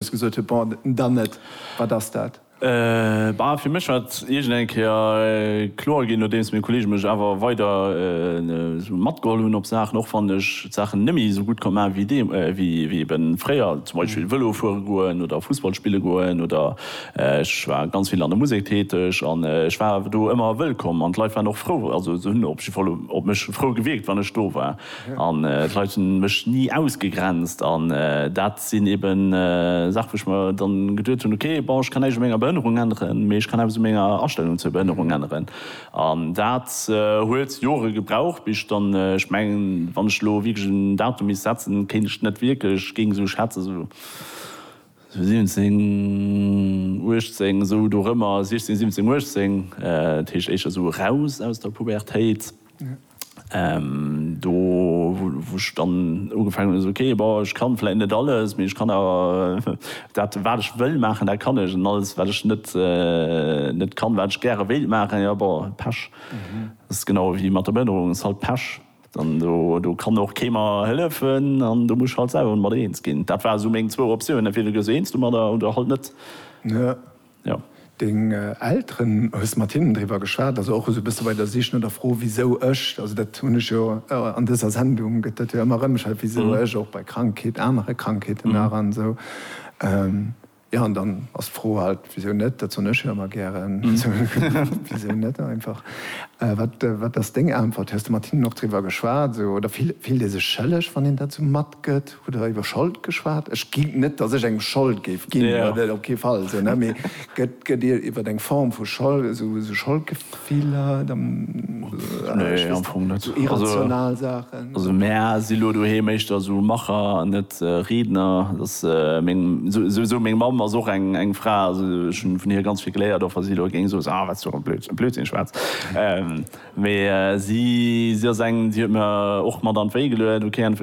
Schluss gesot huet, Bon, dann net, wat ass dat? Bah, fir mech war et iergend eng Kéier kloer ginn, nodeems meng Kolleege mech awer weider esou matgeholl hunn op Saachen, och wann ech d'Saachen net méi esou gutt konnt maachen, wéi ebe fréier, zum Beispill Vëlo fuere goen oder Fussball spille goen. Oder ech war ganz vill an der Musek täteg an ech war awer do ëmmer wëllkomm an d'Leit waren och frou, also se hunn op jidde Fall op mech frou gewierkt, wann ech do war. An d'Leit hu mech ni ausgegrenzt. An dat sinn eben Saache wou ech mer dann geduet hunn, ok, bon, ech kann näischt u menger Behënnerung änneren, mee ech kann eppes u menger Astellung zur Behënnerung änneren. An dat huet Jore gebraucht, bis ech dann, ech mengen, wann ech elo wierklech en Datum misst setzen, kéint ech net wierklech, géing esou schätzen, esou 17, 18, esou dorëmmer, 16, 17, 18, dat heescht éischter esou eraus aus der Pubertéit. Do wou ech dann ugefaangen hunn, esou ok, bon ech kann vläit net alles, mee ech kann awer dat wat ech wëll maachen, dat kann ech an alles wat ech net net kann, wat ech gäre wéilt maachen, jo bon Pech. Dat ass genau ewéi mat der Behënnerung, ass halt Pech. Dann do do kann och kee mer hëllefen an do muss ech halt selwer mat eens ginn. Dat ware sou meng zwou Optiounen, entweder gees du eens domadder oder halt net. jo. Deng Elteren, hues de mat hinnen driwwer geschwat, also och esou e bësse bei der Sich no der Fro wisou ech, also dat hunn ech jo an dëser Sendung gëtt dat jo ëmmer erëm gestellt, wisou ech och bei Krankheet, anere Krankheeten nach an esou, jo an dann ass d'Fro halt, wisou net, dat soen ech jo ëmmer gären, wisou net einfach. Wat wat ass deng Äntwert? Hues de mat hinnen och driwwer geschwat esou oder fillt ee sech schëlleg wann een dat esou matgëtt? Hutt der iwwer Schold geschwat? Ech ginn, net datt ech engem Schold géif ginn, dat op kee Fall, esou, ne, mee gëtt, gëtt Dir iwwer eng Form vu Schold, esou, esou Scholdgefiller, ech weess net, esou irrational Saachen? Also mä si lo doheem éischter esou Macher an net Riedner. Et ass meng, souwisou meng Mamm ass och eng, eng Fra, also ech hunn vun hir ganz vill geléiert, och wa si elo géing soen, ah, wat s du och e Blödsinn schwätz. Mee si si ass eng, déi huet mir och mat an d'Wéi geluet, ok an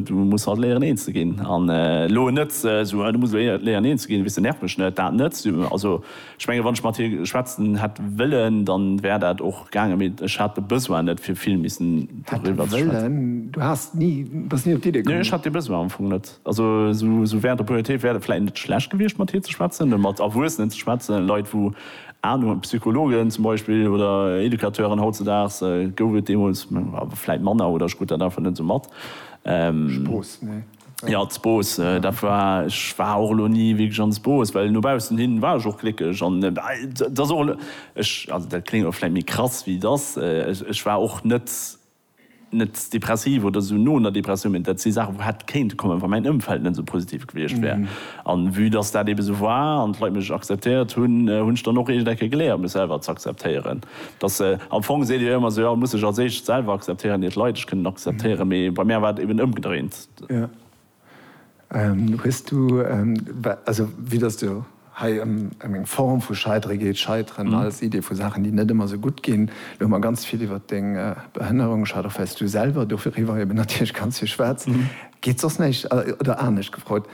du muss halt léieren een ze ginn an elo net esou, du muss léieren een ze ginn, weess de, nerv mech net, dat net. Also ech menge wann ech mat hir schwätzen hätt wëllen, dann wär dat och gaangen, mee ech hat de Besoin net fir vill missen doriwwer ze schwätzen. Du bass ni op d'Iddi komm? Nee, ech hat dee Besoin am Fong net. Also sou während der Pubertéit wär et vläit net schlecht gewiescht mat hir ze schwätzen, ne, mat Erwuessenen ze schwätzen, Leit wou Anung hunn, Psychologen zum Beispill oder Educateuren. Hautzedaags gouf et deemools awer vläit manner oder ech krut dat einfach net sou mat. Spross, nee. Jo, d'Spross, dat war, ech war och elo ni wierklech an d'Spross, well no baussen hin war ech och gléckeg an et ass och elo, ech, also dat kléngt elo vläit méi krass wéi et ass, ech war och net net depressiv oder esou no einer Depressioun, mä dat si Saachen, wou hätt kéinte kommen, wa mäin Ëmfeld net esou positiv gewiescht wär. An vue dass dat ebe esou war an d'Leit mech akzeptéiert hunn, hunn ech dann och eescht Ecke geléiert, mech selwer z'akzeptéieren. Dass, am Fong seet Dir jo ëmmer sou, jo, muss sech als éischt selwer akzeptéieren, ier d'Leit ech kënnen akzeptéieren, mä bei mär war et eben ëmgedréint. Hues du, also vue dass et jo hei ëm eng Form vu Scheidere geet, Scheiteren als Idee vu Saachen, déi net ëmmer esou gutt ginn, elo hu mer ganz vill iwwert deng Behënnerung geschwat, och wèil's du selwer doriwwer eben natierlech ganz vill schwätz, geet soss näischt, oder anescht gefrot,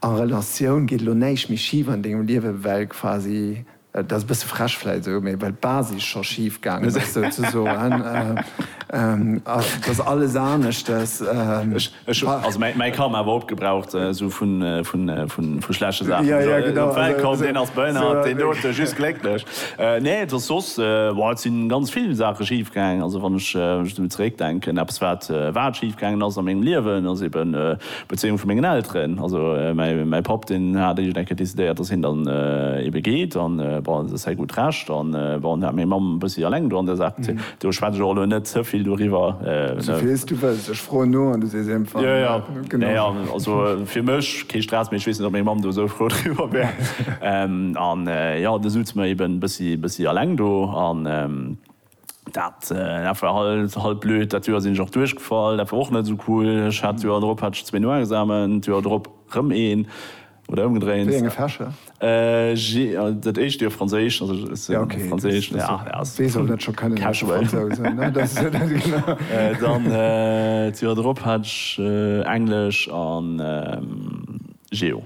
a Relatioun, geet elo näischt méi schif an dengem Liewe well quasi Et ass e bësse frech vläit esou, mee well d'Basis scho schif gaangen ass souzesoen, ass dass alles aneschtes. Ech hu also mäi Karma awer opgebraucht, esou vu schlechte Saachen. Jo, jo, genau. Op d'Welt komm, deen ass behënnert, deen dote just glécklech. Nee, et ass soss, bon, et si ganz vill Saache schif gaangen. Also wann ech esou zeréckdenken, eppes wat, wat schif gaangen ass a mengem Liewen, ass eben, D'Bezéiung vu mengen Elteren, also mäi Papp, deen hat eréischt eng Kéier decidéiert, dass hien dann ebe geet, an bon, dat ass säi gutt Recht, an bon, dat hat meng Mamm e bëssi eleng do an där Saach bezitt. Do schwätz ech och elo net ze vill doriwwer, ne. Souvill s du wëlls, ech froen no an du sees eemfall jo. Jo, nee, also fir mech kee Stress, mee ech weess net, ob meng Mamm do esou frou driwwer wär. An jo, du souz mer eben e bëssi eleng do. Dat war halt blöd. Dat Joer sinn ech och duerchgefall. Dat war och net esou cool. Ech hat d'Joer drop hat ech zwee Noexamen, d'Joer drop rëm een. Oder ëmgedréint. Wéi enge Fächer? Dat éischt Joer Franséisch, also ech hat Franséisch. Wee soll dat scho kënnen, e Fransous? Dann d'Joer drop hat ech Englesch a Geo.